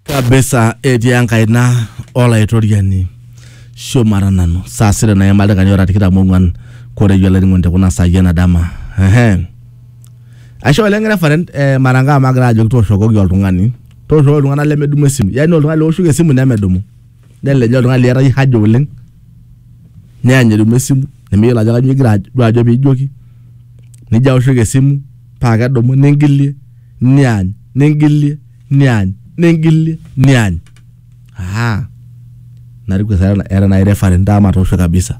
kabisa etii enkaina olaitoriani shumata nanu saa sita naima ildaikani ora tikitam ong'uan koreyie olainining'oni te kuna saai ena dama ehe aisho oleng referent eh, mara ngaa magira ajoki tooshokoki oltung'ani tooshokoki iltung'anak lemedumu esimu yaani oltung'ani leoshoki esimu nemedumu Neleja oltung'ani liata iyie haja oleng neany edumu esimu nimiyiolo ajo kanyoo igira duo ajo piijoki nijo aoshoki esimu paa kedumu ningilie niany ningilie niany ningilie niany aa nariku etaa etaa naai referee ntaa matoosho kabisa.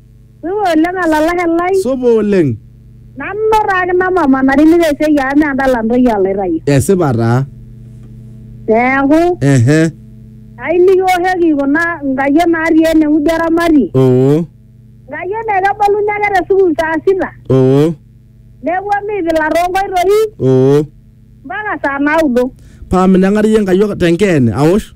Supa oleng olalashe lai. Supa oleng. Nanu taa kina mama natimira esiai amu mee endala ntoyie aloitayu. Esipa taa. Neeku. Ehe. Ayieu nikiwoshoki kuna nkayiok natii ene wueji eramati. Oo. Nkayiok naa keboluni ake te sukuul saa sita. Oo. Neponu aipila too nkoitoi. Oo. Mpaka saa naudo. Paa minang'ari iyie nkayiok te nkeene awosh?